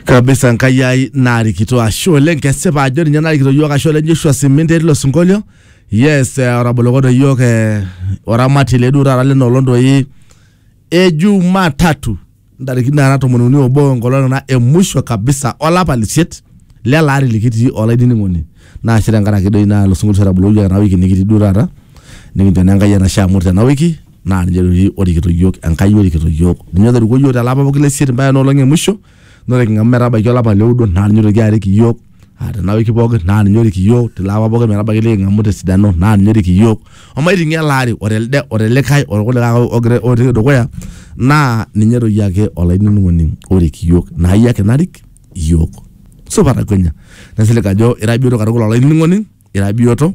kabisa nkai ai narikito ashe oleng kesipa ajo ninye narikito yiok ashe oleng joshua siminte etii ilo sinkolio yes eh, otabolokoto yiok eh, oramati leduo taata lena olong doi ejuma tatu ntarikini nara tomon uni obo enkolong ena emusho kabisa olapa lisiet lele ari likitii olainining'oni naa ashe tenkaraki doi naa ilo sinkolio otabolokoyioki ena wiki nikitii duo taata nikincho naa enkai enashe amu ore tena wiki naa ninye doi orikito iyiook Enkai orikito iyiook ninye otorikuo iyiook telapa pooki le isiet mpaka ena olong e musho naa ore king'amu metabaiki olapa le oudo naa ninye oitoki arik iyiook aa tena wiki pooki naa ninye orik iyiook tilo apa pooki metabaiki liking'amu tesidano naa ninye orik iyiook omaiting'ie ele ari o telde o telikae o tolkulikae ake ogira otii dukuya naa ninye doi ake olainining'oni orik iyiook naa iyie ake narik iyiook supa takwenia nesilig ajo ira biyioto katukul olainining'oni ira biyioto.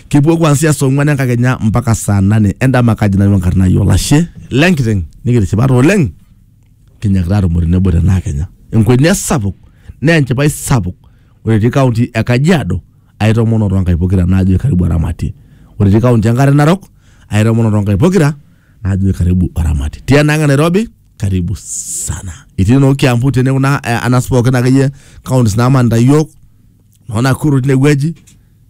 kipuo kuanzia saa ong'uan enkakenya mpaka saa nane endama kaji nanu enkarna ai olashe lenkiteng nikitishipate oleng kinyakita atumo tenebo tenaa kenya enkwenia sapuk naa enchipai sapuk ore etii kaunti e kajiado aitomono toonkai pokira naajo karibu aramati ore etii kaunti enkare narok aitomono toonkai pokira naajo karibu aramati tienang e nairobi karibu sana itii noo kiambu tene kuna eh, anas pookin akeyie kauntis naamanita yiok naona akuru tine wueji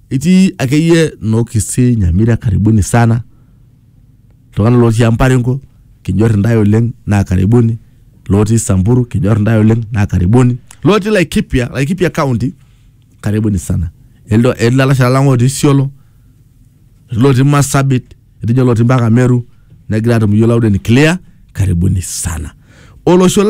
itii akeyie noo kisii nyamira karibuni sana iltung'anak lotii emparingo kinyor intae oleng naa karibuni lotii samburu kinyor intae oleng naa karibuni lotii laikipia laikipia county karibuni sana Eldo- etii lalashera lang otii isiolo etii lotii masabit etii lotii mpaka meru negira atum iyiok loud and clear karibuni sana olosho lang